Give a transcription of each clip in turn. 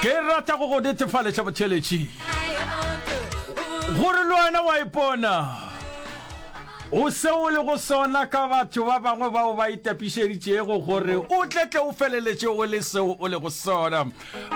ke rata go go netefaleša botheletši gore le wena wa ipona o se o le go sona ka batho ba bangwe bao ba itapišeditšego gore o tletle o feleletše o le seo o le go sona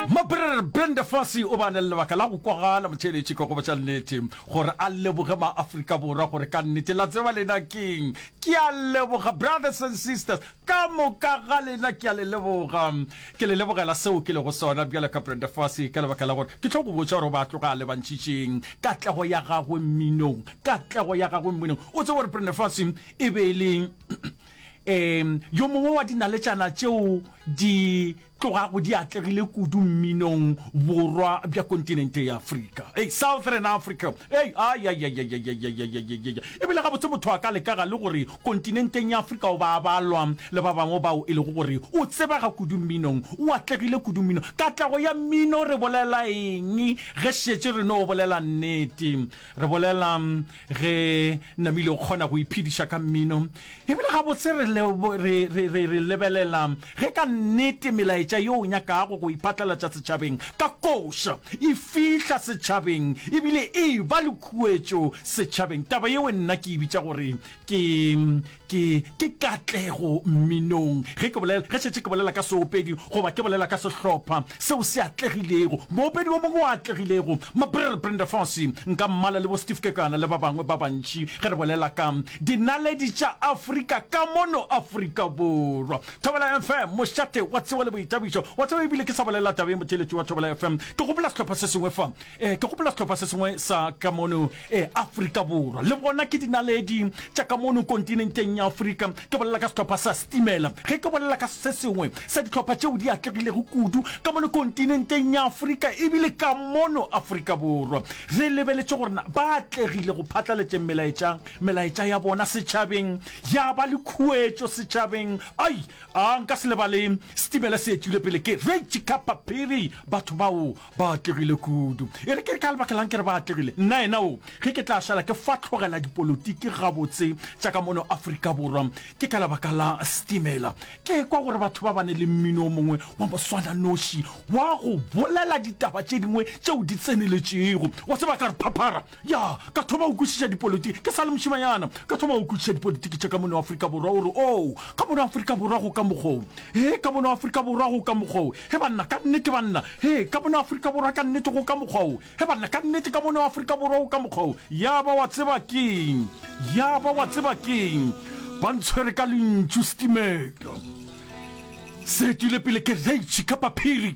mabrere brenda fasi o ba ne le lebaka la go kwagala motheletši ka go botša nnete gore a leboge maaforika borwa gore ka nnete la tseba lena keng ke a leboga brothers and sisters Ka moka ga lena ke a le leboga. Ke le lebogela seo ke lego sona, bjalo ka Brenda Fassie, ka lebaka la gore ke tlo go botša gore o ba tloga a le bantšitšing. Katlego ya gagwe mminong, katlego ya gagwe mminong. O tseba gore Brenda Fassie e be e le um yo mongwe wa dinaletšana tšeo di Tlogago di atlegile kudu mminong borwa bja kontinente ya Afrika. Hei, Southern Africa! Hei, ayayayayayayayayayayaya! E bile gabotse motho a ka leka ga le gore kontinenteng ya Afrika o ba a balwa le ba bangwe bao e lego gore o tsebega kudu mminong, o atlegile kudu mminong. Katlego ya mmino re bolela eng ge šetše re no bolela nnete? Re bolela Re namile go kgona go iphediša ka mmino, e bile gabotse re, re, re, re, re lebelela ge ka nnete melaetša ye o nyakago go e phatlalatša setšhabeng ka koša e fihla setšhabeng e bile e ba le khuetšo setšhabeng. Taba yeo nna ke e bitša gore ke, Ke, ke katlego mminong, ge ke bolela, ge šetše ke bolela ka seopedi, goba ke bolela ka sehlopha seo se atlegilego, moopedi wo mongwe o atlegilego, ma Brr Brenda Fassie, nka mmala le bo Steve Kekana le ba bangwe ba bantši, ge re bolela ka Dinaledi tša Afrika ka mono Afrika Borwa. Thobela FM, mošate wa tsewa le boitabišo. Wa tseba, ebile ke sa bolela taba ye, motheeletši wa Thobela FM, ke gopola sehlopha se sengwe fa, eh, ke gopola sehlopha se sengwe sa ka mono Ee, Afrika Borwa le bona ke dinaledi tša ka mono kontinenteng ya Afrika. Ke bolela ka sehlopha sa Setimela ge ke bolela ka se sengwe sa dihlopha tšeo di atlegilego kudu ka mono kontinenteng ya Afrika ebile ka mono Afrika Borwa. Re lebeletše gore na ba atlegile go phatlaletšeng melaetša melaetša ya bona setšhabeng, ya ba le khuetšo setšhabeng. Ai, a nka se lebale Setimela se etšwile pele ke Rychika Paphiri, batho bao Ba atlegile kudu. E re ke re ka lebaka lang ke re ba atlegile? Nna ena o, ge ke tla šala ke fatlhogela dipolotiki gabotse tša ka mono Afrika Borwa, ke ka lebaka la Stimela. Ke ekwa gore batho ba bane le mmino o mongwe wa moswananoši wa go bolela ditaba tše dingwe tšeo di tseneletšego. Wa tseba, ka re phaphara Ya, ka thoma go kwešiša dipolitiki, ke sa le mošemanyana, ka thoma go kwešiša dipolitiki tša ka mono Afrika Borwa, o re, Oo, ka mono Afrika Borwa go ka mokgwa wo. Hee, ka mono Afrika Borwa go ka mokgwa wo. He banna, ka nnete, banna. Hee, ka mono Afrika Borwa ka nnete go ka mokgwa wo. He banna, ka nnete, ka mono Afrika Borwa go ka mokgwa wo. Ya ba wa tseba keng? Ya ba wa tseba keng? Ba ntshwere ka lentšu, setimela se etile pele kereitšhe ka paphiri.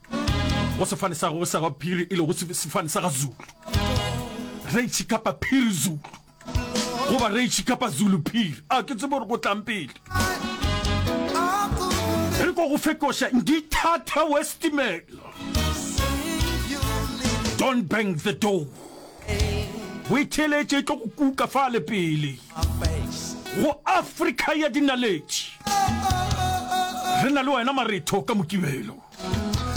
go sefane sa go sa ga phiri e le go sefane sa ga zulu re tshikapa phiri zulu go ba re tshikapa zulu phiri a ke tsebo re go tlang pele re go go fetoša ngithatha westimela don't bang the door o e theletše e tlo go kuka fa le pele go afrika ya dinaletše re na le wena maretho ka mokibelo